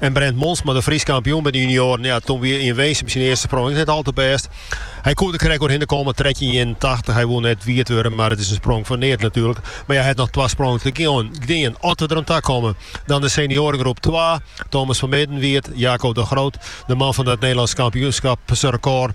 En Brent Monsma, de Frysk kampioen by de junioaren, ja, toen wie yn Winsum syn earste sprong ek net al te bêst. Hy koe der krekt oerhinne komme, 1381. Hy woe net wiet wurde, mar it is in sprong fan neat natuerlik. Mar ja, hy hat noch twa sprongen te gean, as we der oan ta komme. Dan de senioaregroep twa, Thomas van Midden wiet, Jaco de Groot, de man fan it Nederlânske kampioenskapsrekôr.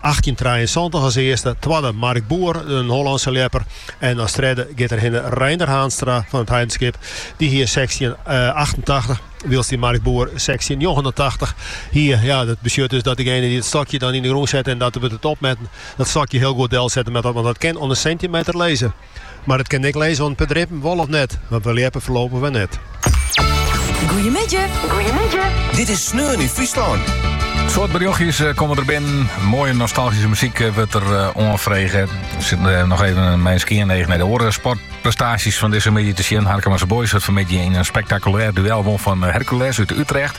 achttjintrijeensantich as earste, twadde Mark Boer, in Hollânske ljepper, en as tredde giet derhinne Reinder Haanstra fan it Heidenskip. Dy hie sechstjin achtentachtich, wylst dy Mark Boer sechstjin njoggenentachtich hie. Ja, dat betsjut dus dat degene dy't it stokje dan yn de grûn sette en dat wurdt it opmetten, dat stokje hiel goed delsette moat, want dat kin oan de sintimeter lizze. Mar it kin ek lizze oan in pear drippen wol of net, want we ljeppe foarlopich wer net. Goeiemiddei. Dit is Sneon yn Fryslân. Soad berjochtsjes eh, komme der binnen. Moaie nostalgyske muzyk eh, wurdt der eh, oanfrege. Ik sit noch even mei in skean each nei de oare sportprestaasjes fan dizze middei te sjen. Harkemase Boys het fanmiddei yn in spektakulêr duel wûn fan Hercules út Utrecht.